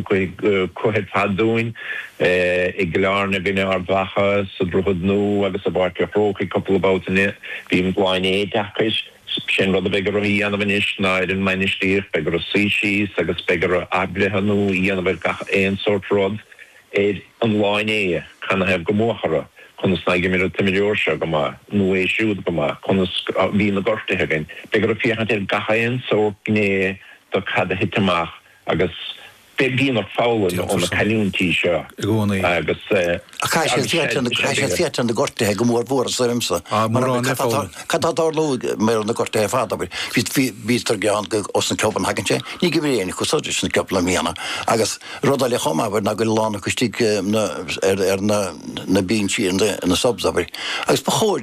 Cuireadh fé ndeara dúinn é i gClár na Bainne Ard Mhacha, sa Droichead Nua agus i bPáirc a' Chrócaigh cúpla babhta eile. Bíonn bliain éideachais. Sin rud a bheidh orthu a dhéanamh anois ná ar an mbainistíocht, beidh orthu suí síos agus beidh orthu athbhreithniú a dhéanamh ar gach aon sórt rud ar an lá inné, canathaobh gur buadh orthu, conas ná dh'imir an t-imreoir seo go maith nó é siúd go maith, conas a bhí na gortuithe againn. Beidh orthu féachaint ar gach aon sórt gné do cad a thit amach. Agus bíonn ort foghlaim ó na cailliúintí seo i gcónaí. Agus. Caithfidh siad féachaint ar. Caithfidh siad féachaint ar na gortaithe go mór mhór ormsa. Ah, mórán le foghlaim. Cad tá tarlú mar le na gortaithe ar fad, abair. Bhí, bhí, bhíos tar geall go, os na Copenhagen sé, ní go bhfuil éinne chomh soirir sin cúpla mhíonna. Agus rud eile chomh maith, abair, ná go bhfuil a lán acu istigh na, ar, ar na, na binsí in the, in the subs, abair. Agus ba chóir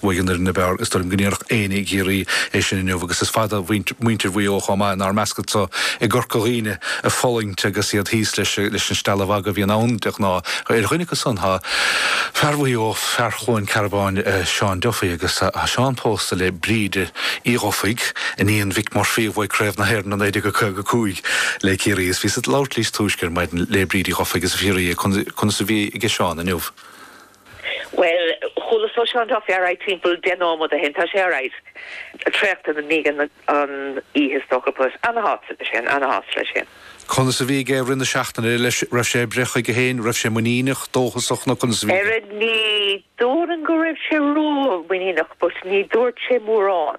Bhuaigh an fhoireann ab fhearr is dóigh liom go ndéarfadh éinne i gCiarraí é sin inniu agus is fada muintir Mhuigh Eo chomh maith inár measc anseo i gCorca Dhuibhne ag fulaingt agus iad thíos leis an stealladh mhagaidh a bhíonn ann de ghnáth. Ar dhuine acu san tá fear Mhaigh Eo, fear Chluain Cearbáin, Seán Duffy agus tá Seán pósta le Bríd Uí Dhufaigh, iníon Mhick Murphy a bhuaigh Craobh na hÉireann i 1955 le Ciarraí is bhíos ag labhairt leis túisce ar maidin le Bríd Uí Dhufaigh is d'fhiafraíos di conas a bhí age Seán inniu. Bhuel, chuala-sa é sa taxi aréir timpeall deich nóiméad chun a haon. Tá sé ar ais. Traochta i ndiaidh na hoíche is dócha but ana-shásta leis féin, ana-shásta leis féin. Conas a bhí aige i rith na seachtaine leis, raibh sé ag breith chuige féin, raibh sé muiníneach, dóchasach nó conas a bhí aige? Ní déarfainn go raibh sé ró-mhuiníneach but ní dúirt sé mórán.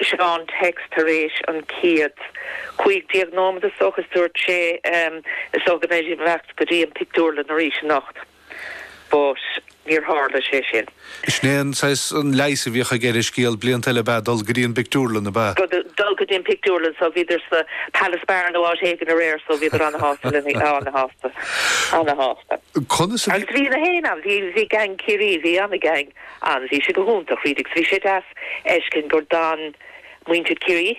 Sheol sé text Tar éis an chéad chúig déag nóimead is dócha is dúirt sé em is dócha go mbeidh sibh ag teacht go dtí an pictiúrlann arís anocht but níor tharla sé sin. Sin é an saghas leigheas a bhíodh aige ar an scéal blianta eile ab ea dul go dtí an bpictiúrlann ab ea? Dul go dtí an pictiúrlann so bhíodar sa Palace Bar nó áit éigin aréir so bhíodar ana-shásta le na ana-shásta ana-shásta. Conas a bhí? Agus bhí tú féin ann bhí bhí gang Ciarraí bhí ana-gang. ann. Bhí sé go hiontach, bhí sé deas a fheiscint gur d'fhan muintir Chiarraí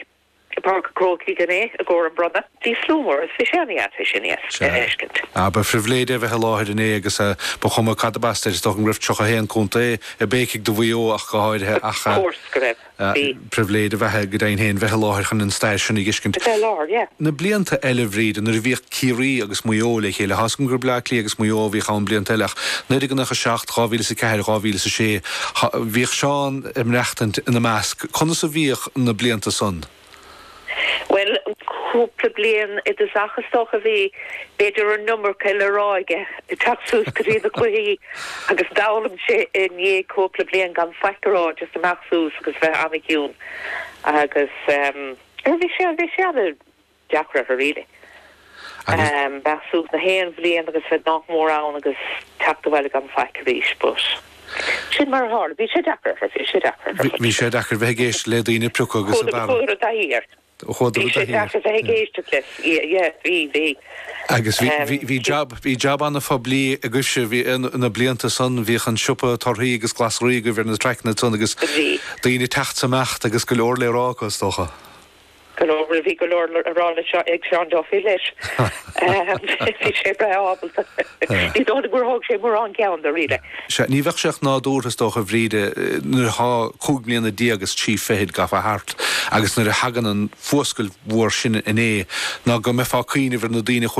i bPáirc an Chrócaigh inné i gcomhair an bronnadh. Bhí slua mór agus bhí sé an-dheas é sin a fheiscint. Sea. Ba phribhléid é a bheith i láthair inné agus ba chuma cad ab as duit, is dócha go raibh tríocha a haon contae ag béiceadh do Mhaigh Eo ach go háirithe ach. Ar ndóigh go raibh. Sea. Pribhléid ab ea go deimhin féin bheith i láthair chun an stair sin a dh'fheiscint. Bheith i láthair, yeah. Na blianta eile, a Bhríde, nuair a bhíodh Ciarraí agus Maigh Eo le chéile, thá 's agam gur Bleá Cliath agus Maigh Eo a bhíodh ann blianta eile ach nuair a, nócha seacht, dhá mhíle is a ceathair, dhá mhíle is a sé, thá, bhíodh Seán ag maireachtaint ina measc. Conas a bhíodh na blianta san? Bhuel, cúpla bliain i dtosach is dócha a bhí, b'fhéidir an iomarca le rá aige, ag teacht suas go dtí na cluichí agus d'fhoghlaim sé i ndiaidh cúpla bliain gan faic a rá, just amach suas agus bheith an-chiúin agus bhí sé, bhí sé an-deacair orthu really. agus. mbeadh suas le haon bhliain agus bheith nách mór ann agus teacht abhaile gan faic arís. But sin mar a tharla. Bhí sé deacair ar fad, bhí sé deacair ar fad. Bhí sé deacair bheith ag éisteacht le daoine ag priocadh agus ag bearradh. Chuadar i dtaithí air. Chuadar i dtaithí air. Bhí sé deacair bheith ag éisteacht leis. Yeah, bhí, bhí. Agus bhí, bhí, bhí jab, bhí jab an-phoiblí agaibhse, bhí, na blianta san, bhíodh an siopa torthaí agus glasraí agaibh ar na traiceanna san agus. Bhí. Daoine ag teacht 's imeacht agus go leor le rá acu is dócha. Go leor, bhí go leor le rá le seo ag Seán Duffy leis. Bhí sé breá ábalta. Ní dóigh liom gur thóg sé mórán ceann de really. Sea, ní bheadh sé ach nádúrtha is dócha, a Bhríde, nuair atá cúig mbliana déag is trí fichid gafa thart agus nuair a thagann an fuascailt mhór sin inné, ná go mbeifeá ag cuimhneamh ar na daoine a chuaigh